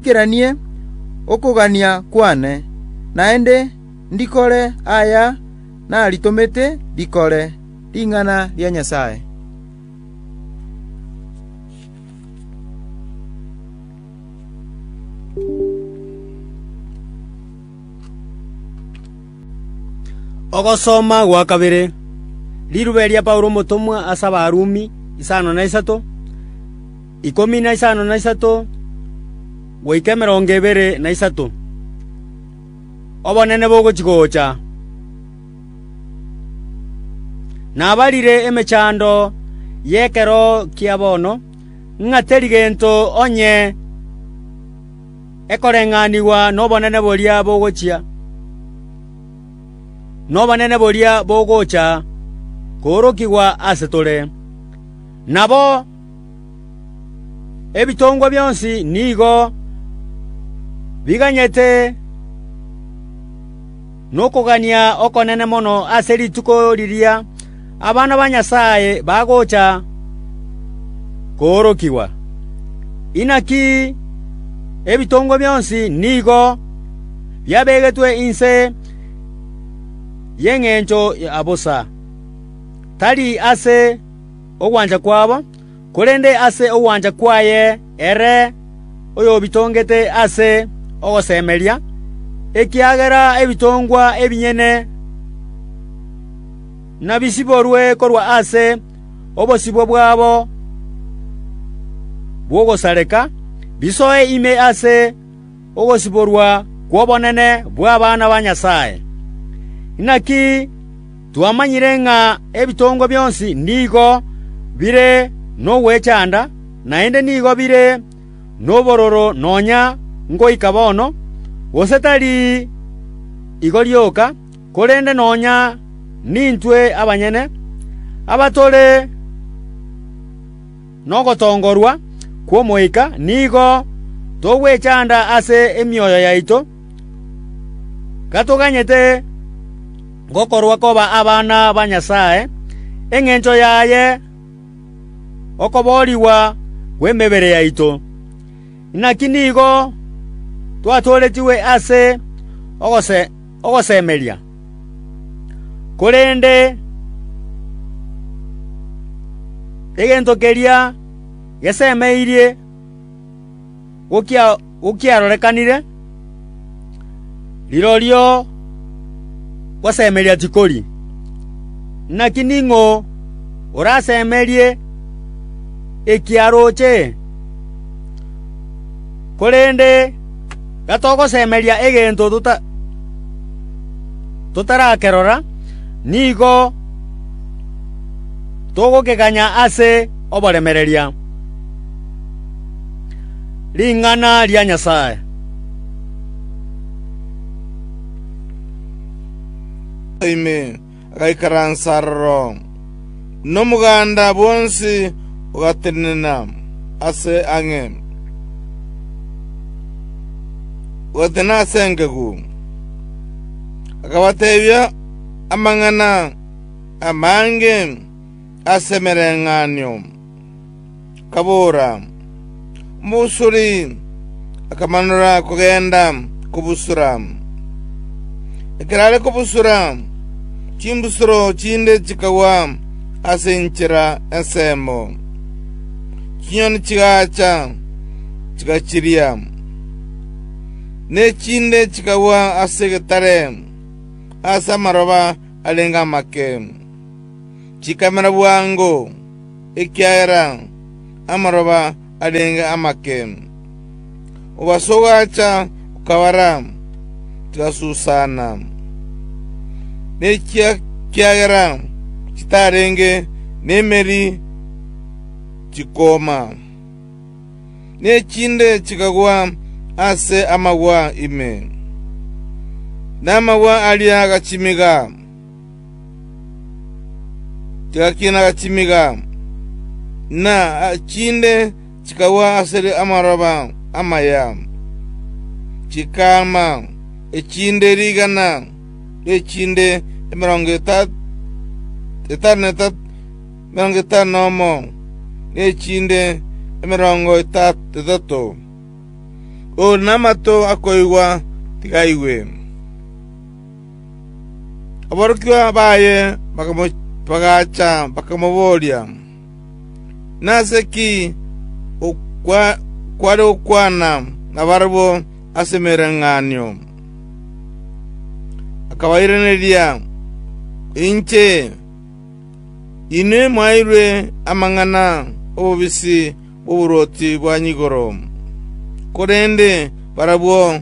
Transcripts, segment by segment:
“Naikeranie okogania kwane, naende ndikore aya naritomete rikore, ring'ana ria Nyasae.” Ogosoma gwa kabere. Rirube ria Paulo omotomwa ase Abarumi, isano na isato ikomi na isano na isato goika emerongo ebere na isato. Obonene bogochi‐gocha nabarire emechando y'ekero kia bono, ng'a teri gento onye ekoreng'anigwa nobonene boria bogochia, nobonene boria bogocha koorokigwa ase tore. Nabo Ebitongwa bionsi nigo biganyete nokogania okonene mono ase rituko riria abana ba Nyasae bagocha koorokigwa. Inaki ebitongwa bionsi nigo biabegetwe inse y'engencho ya bosa, tari ase ogwancha kwabo, korende ase ogwancha kwaye ere oyobitongete ase ogosemeria, ekiagera ebitongwa ebinyene nabisiborwe korwa ase obosibwa bwabo bw'ogosareka, bisoe ime ase ogosiborwa kw'obonene bw'abana ba Nyasae. Inaki twamanyire ng'a ebitongo bionsi nigo bire nogwechanda, naende nigo bire nobororo nonya ngoika bono, gose tari igo rioka, korende nonya nintwe abanyene, abatore Kristo. Nogotongorwa kw'Omoika nigo togwechanda ase emioyo yaito, gatoganyete gokorwa koba abana ba Nyasae, engencho yaye okoboorigwa kw'emebere yaito. Naki nigo twatooretigwe ase ogosesenigwa. ogosemeria, korende egento keria gesemeirie gokiarorekanire, rirorio gosemeria tikori. Naki ning'o orasemerie ekiaroche? Korende gatogosemeria egento totarakerora, nigo togokeganya ase oboremereria ring'ana ria Nyasae. Amen. agaikaransa aroro, na omoganda bwonsi ogatenena ase ang'e, ogatenena ase engegu. Akabateebia amang'ana amange as'emereng'anio. kabora, Omobusuri! Akamanora kogenda kobusura. Ekero are kobusura, chimbusuro chinde chikagwa ase enchera ensemo, chinyoni chigacha, chigachiria. Ne chinde chikagwa ase egetare, ase amaroba arenge amake, chikamera bwango. ekiagera amaroba arenge amake. Obosa ogacha okabara, chigasusana, ne chi'ekiagera chitarenge nemeri chikooma, ne echinde chikagwa ase amagwa ime, na amagwa aria agachimiga. Gaki nagachimiga, na chinde chikagwa asere amaroba amaya, chikaama echinde rigana, na echinde emerongo etano nomo, na echinde emerongo etato. Ore namato akoigwa, tiga aigwe. Aborokigwa baye bagacha bakamoboria, “Nase ki kware gokwana nabarabwo ase emereng'anio?” Akabairaneria, “Inche, inwe mwaeirwe amang'ana ’obobisi bw'oboruoti bwa nyigoro, korende barabwo,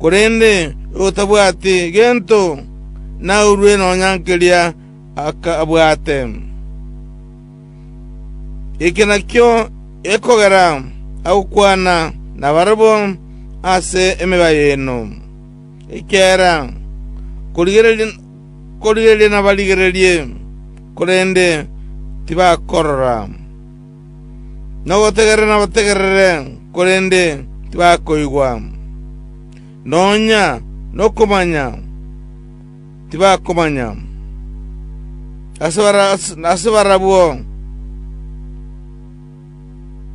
korende otabwati gento, naurwe nonya nkeria abwate. Eke nakio ekogera agokwana nabarabwo ase emebaye eno. Ekiagera korigereria nabarigererie, korende tibakorora.” “Nobotegerere, nobotegerere, korende tibakoigwa, nonya nokomanya tibakomanya. Ase barabwo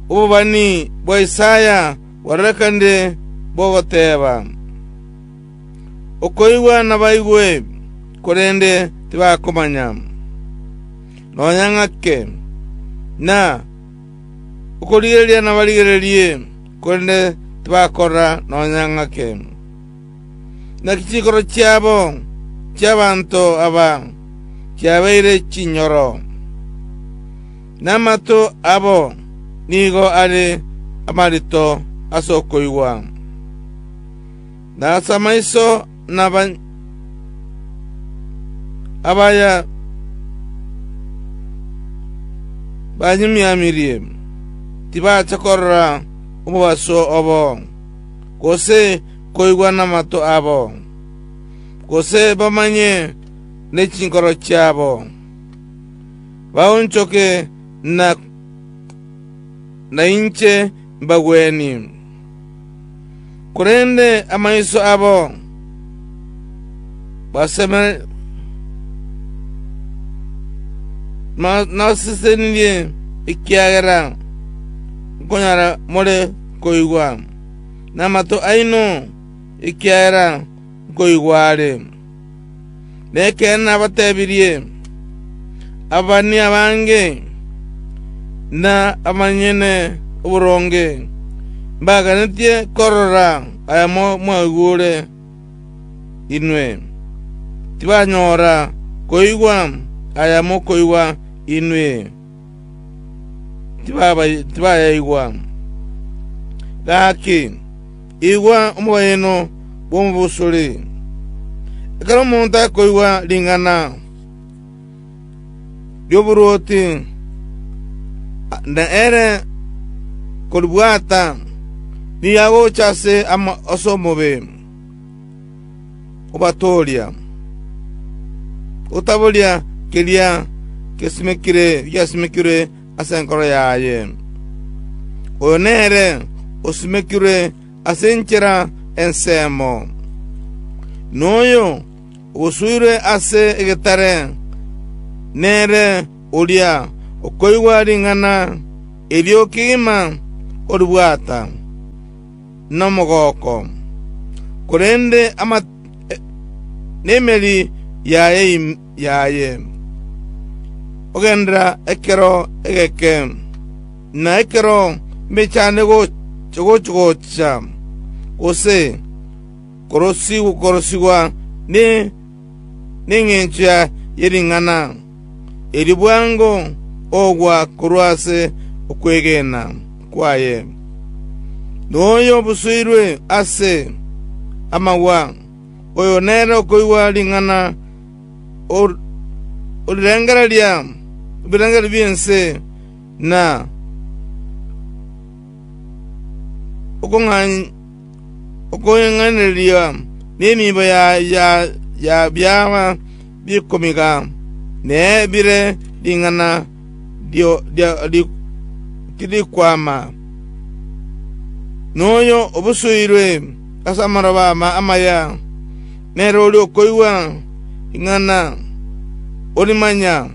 obobani bwa Isaya bwarorekanire bogoteeba, Okoigwa nabaigwe, korende tibakomanya; nonya ng'ake, na okorigereria nabarigererie, korende tibakora nonya ng'ake. Naki chinkoro chiabo chi'abanto aba chiabeire chinyoro, na amato abo nigo are amarito ase okoigwa. Nase amaiso nabanyamiamirie, tibache korora obobaso obo, gose koigwa namato abo, gose bamanye ne chinkoro chiabo, baonchoke na inche mbagwenie. korende amaiso abo nasesenirie ekiagera nkonyara more koigwa, na amato aino ekiagera nkoigwa are. Nekeene nabatebirie, ababani abange, na abanyene oboronge, mbaganetie korora ayamo mwaigure inwe, tibanyora koigwa aya mokoigwa inwe. tibaba- tibayaigwa. Gaki, igwa omobayeeno bw'omobusuri. Ekero omonto akoigwa ring'ana ri'oboruoti, na ere koribwata, nigo agocha ase omobe. obatooria, otaboria keria gesimekire giasimekirwe ase enkoro yaye. Oyo nere osimekirwe ase enchera ensemo, noyo ogosuirwe ase egetare nere oria okoigwa ring'ana erio kegima oribwata. nomogooko, korende nemeri yaye ime yaye, ogenderera ekero egeke, na ekero mbechane gochigocha, gose korosigwa ne. Nengencho ye ring'ana erio bwango ogwa korwa ase okwegena kwaye, noyo obusoirwe ase amagwa, oyo nere okoigwa ring'ana orirengereria ebirengererio bi'ense na okong'ainereria. Okoing'anereria nemiibo ya biaaba bikomiga, ne bire ring'ana tirikwama, noyo obusuirwe ase amaroba amaya, nere oria okoigwa ring'ana orimanya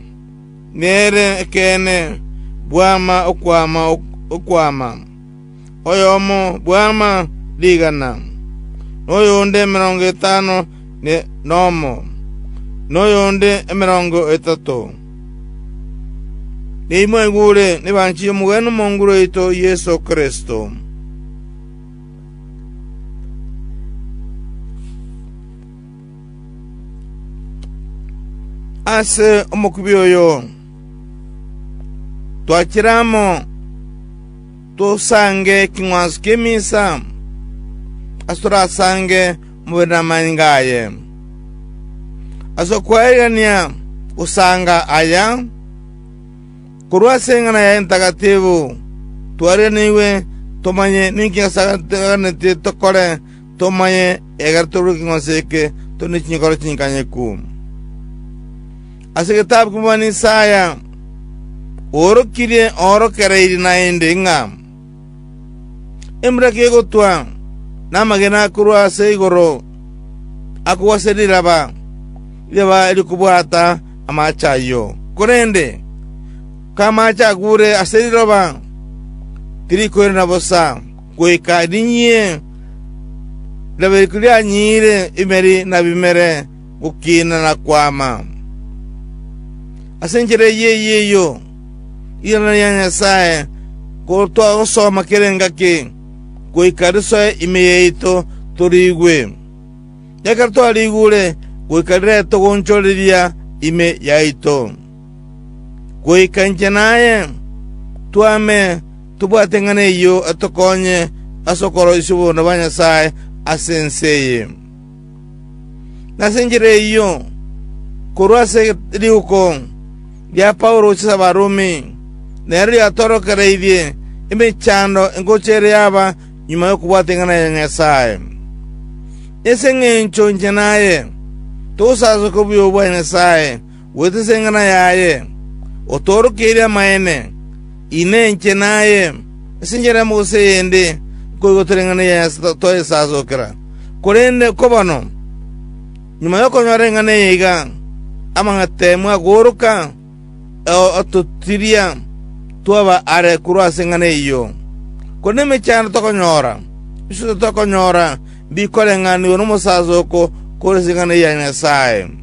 nere ekeene bwama okwama okwama. oyomo bw'ama rigana, na oyonde emerongo etano nomo, na oyonde emerongo etato. Nimwaigure nebanchi y'omogwene omonguru oito Yeso Kristo. Ase omokubi oyo twachire amo. tosange eking'wanso ki'emisa, ase torasange mobere namanyinga aye. Ase okwaerigania gosanga aya, korwa ase eng'ana yaye entagatifu, twariganigwe tomanye ninki Nyasae atweganete tokore, Tomaye, egera torue king'wanso eke, tore ne chinkoro chinkanyeku. Ase egetabu ki'omobani Isaya, oorokirie oorokereiri naende ng'a, Embura kegotwa, na amagena akorwa ase igoro akogwa ase riraba, riraba rikobwata amaache ayio. Korende k'amaache agure ase riroba, tirikoirana bosa. goika rinyie, riabereku rianyiire imeri na bimere gokina na kwama. Ase enchera eyio eyio, rirano ria Nyasae nkoro twagosoma kera engaki, goika risoe ime yaito toriigwe. Ekero twariigure, goika riretogonsororeria ime yaito. goika inche naye twame tobwate ing'ana eyio atokonye ase okoroisia oboronge bwa Nyasae ase ense eye. Na ase enchera eyio, korwa ase riuko ria Paulo gochia ase Abarumi, nero riatorokereirie emechando engocha ere yaba nyuma y'okobwata ing'ana ya Nyasae. Nese engencho inche naye togosasoka obuya obwo bwa Nyasae, Gwetesa eng'ana yaye, otoorokeirie amaene, Inee, inche naye ase enchera yamo gose eyende nkoigotera eng'ana yaye ase toyesasokera? Korende kobano, nyuma y'okonyora eng'ana eye iga, amang'atemwa agooroka, atotiria twaba aare korwa ase eng'ana eyio. Korende emechando tokonyora, iswe titokonyora mbikoren'ganigwa nomosasoko kore ase eng'ana ya Nyasae.